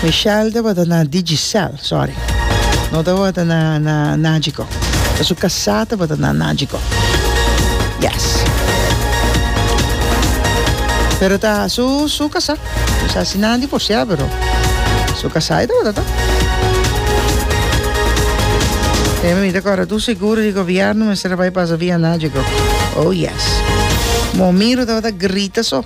Michelle tabata na Digicel, sorry. No tabata na, na Nagico. Pero su casá tabata na Nagico. Yes. Pero ta su, su casá. Pues así na divorciá, pero su casá e tabata ta. E mi te corre tu seguro di gobierno, mi se bai pasa via Nagico. Oh yes. Mo miro tabata grita so.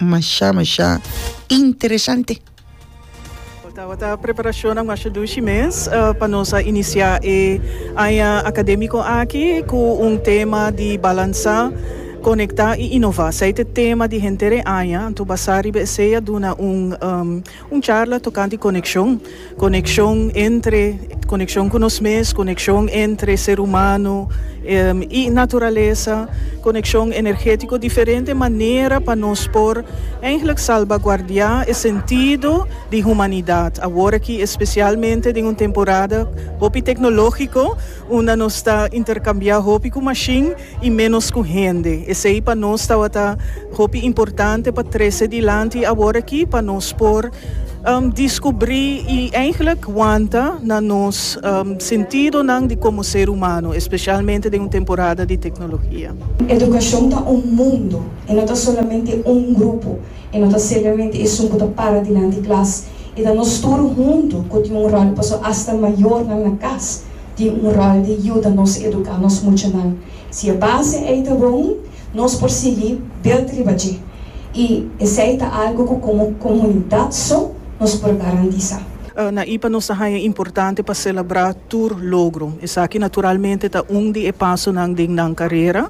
Masha masha interesante. Tawa ta preparashonnan masha dushi mes pa nos a inisiá e aña akadémiko aki ku un tema di balansá, konektá i inová. Esei ta e tema di henter e aña, anto basá riba esei a duna un. Un charla tocante coneccion. Coneccion entre, coneccion cu nos mes, coneccion entre ser humano y naturalesa, coneccion energetico, diferente manera pa nos por eigenlijk salvaguardia e sentido di humanidad awor aki especialmente den un temporada hopi tecnologico unda nos ta intercambia hopi cu machine. i ménos ku hende. Esei pa nos tabata hopi importante pa trese dilanti awor aki pa nos por diskubrí i eigelik wanta na nos sentidonan di komo ser humano, espesialmente den un temporada di teknologia. Edukashon ta un mundu, e no ta solamente un grupo, e no ta semplemente esun ku ta para dilanti klas, e ta nos tur huntu ku tin un ròl paso asta mayornan na kas. tin un ròl di yuda nos eduká nos muchanan. Si e base ei ta bon, nos por sigui belt riba dje, i esei ta algu ku komo komunidat so nos por garantisá. Na ipa nos ta haña importante pa selebrá tur logro. Esaki naturalmente ta un di e pasonan den nan karera,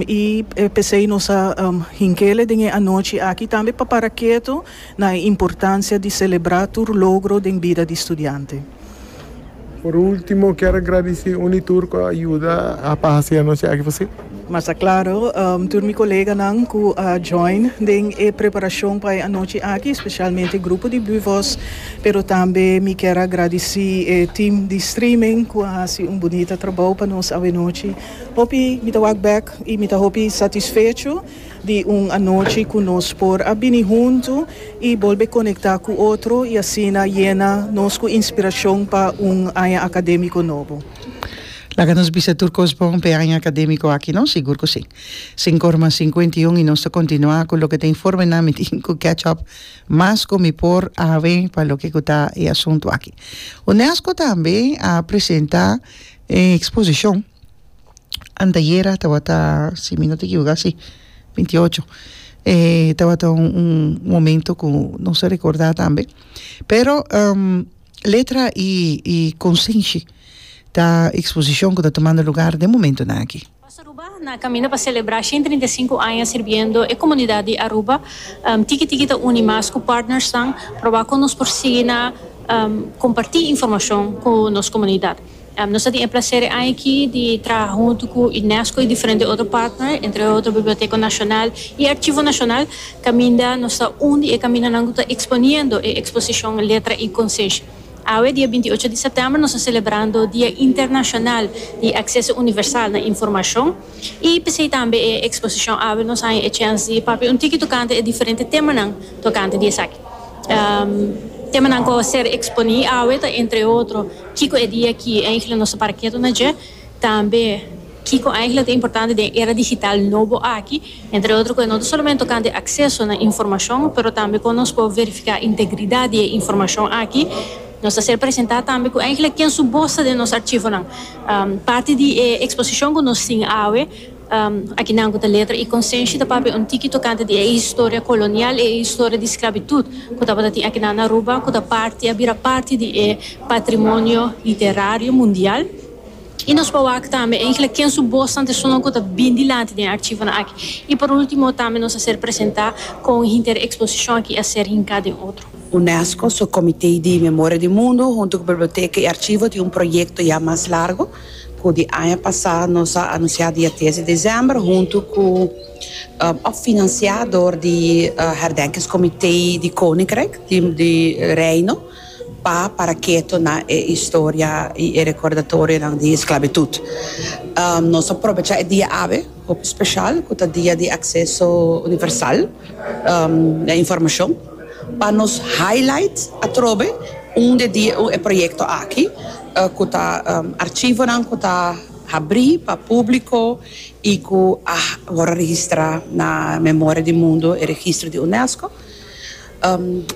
i p'esei nos a hink'e den e anochi aki tambe pa para ketu. Na e importancia di celebra tur logro den bida di studiante. Por ultimo kier a gradici uni tur cu a yuda a pa haci anochi aki posible. Mas ta claro tur mi coleganan cu a join den e preparacion pa e anochi aki, specialmente e grupo di Buvoz, pero tambe mi kier a gradici e team di streaming cu a haci un bunita trabao pa nos awe nochi. Hopi mi ta wak bek y mi ta hopi satisfecho. Di un anochi cu nos por a bini hunto y bolbe conecta cu otro y asina yena nos cu inspiracion pa un aña academico nobo. Laga nos bisa tur cos bon p'e aña academico aki no? Sigur cu si. Sin corma cincuenta y un y nos ta continua cu loke ta informe nan mi tin cu catch up mas cu mi por awe pa loke cu ta e asunto aki. Unesco tambe a presenta e exposicion. Antayera tabata si mi no ta ekivoká si binti ocho eh tabata un un momento ku nos a rekordá tambe pero letra i i konsenshi ta eksposishon ku ta tumando lugar den momentunan aki. Pas Aruba na kaminda pa selebrá shen trinta i sinku aña sirbiendo e komunidat di Aruba. Tiki Tiki ta uni mas ku partnersnan probá kon nos por sigui na kompartí informashon ku nos komunidat. Nos a tin e placer e aña aki di traha huntu cu Unesco y diferente otro partner, entre otro Biblioteca Nacional y Archivo Nacional, caminda nos ta un di e caminanan cu ta exponiendo e exposicion Letra y Conciencia. Awe, dia binti ocho di september, nos ta celebrando Dia Internacional di Acceso Universal na Informacion y p'esey tambe e exposicion awe nos haña e chens di papia un tiki tocante e diferente temanan tocante di esaki. Temanan cu a ser exponi awe ta entre otro. Kiko e dia ki enkele nos ta para ketu na dje? Tambe kiko enkele ta importante den e era digital nobo aki? Entre otro ku e no ta solamente tokante akseso na informashon, pero tambe kon nos por verifiká integridat di e informashon aki. Nos ta ser presentá tambe ku enkele ken su bos ta den nos arshivonan. Parti di e eksposishon ku nos tin awe. Aki nan ku ta letra i konsenshi ta papia un tiki tokante di e historia kolonial, e historia di sklabitut ku tabata tin akinan na Aruba, ku ta parti, a bira parti di e patrimonio literario mundial. I nos por wak tambe enkele ken su bos tantu esun nan ku ta bin dilanti den e archivonan aki. I por ultimo tambe nos a ser presentá kon hinter e eksposishon aki a ser hinká den otro. UNESCO su Komitee di Memoria di Mundu huntu ku Biblioteka i Archivo tin un proyekto ya mas largo Ku di aña pasá nos a anunsiá dia tres di desèmber huntu ku òf finansiá dor di Herdenkingskomité di Koninkrijk di Reino pa para keto na e historia i e rekordatorionan di esklabitut. Nos a probechá e dia awe hopi speshal ku ta Dia di Akseso Universal den Informashon pa nos highlight atrobe un di e proyekto aki. ku ta archivonan ku ta habrí pa públiko i ku a wòrdu registrá na Memoria di Mundo, e registro di Unesco.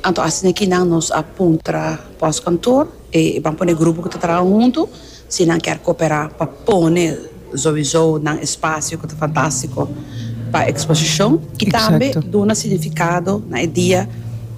Anto asina e kinan nos a puntra pòskantoor, e ban pone e grupo ku ta traha huntu si nan kèr koperá pa pone souizou nan espasio ku ta fantástiko pa eksposishon i tambe duna signifikado na e dia.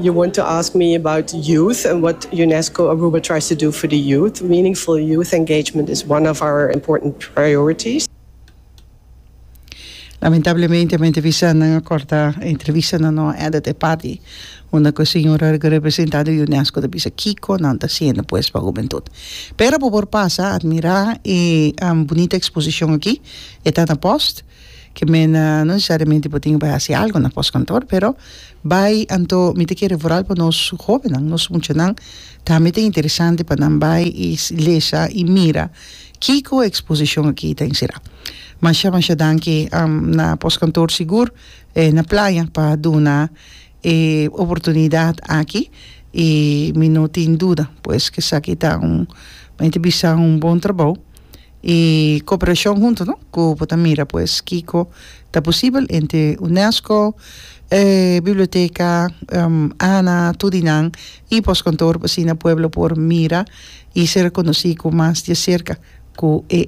You want to ask me about youth and what UNESCO Aruba tries to do for the youth. Meaningful youth engagement is one of our important priorities. Lamentablemente mi ta bisa nan a corta e entrevista nan no a edit e parti unda cu e señora cu representa di UNESCO ta bisa kico nan ta haciendo pues pa hubentud. Pero por por pasa admira e bonita exposicion aki e ta na post. Ke mena no nesesariamente bo tin ke bai hasi algu na pòstkantor, pero bai anto mi ta kere vooral pa nos hóbennan, nos muchanan tambe ta interesante pa nan bai i lesa i mira kiko e eksposishon akí ta enserá. Masha masha danki na pòstkantor Sigur na Playa pa duna e oportunidat aki i mi no tin duda pues ke esaki ta un mi ta bisa un bon trabou. y cooperacion hunto no cu bo ta mira pues kico ta posibel entre unesco biblioteca ana tur y nan y postkantoor asina pueblo por mira y ser reconoci cu mas di acerca cu e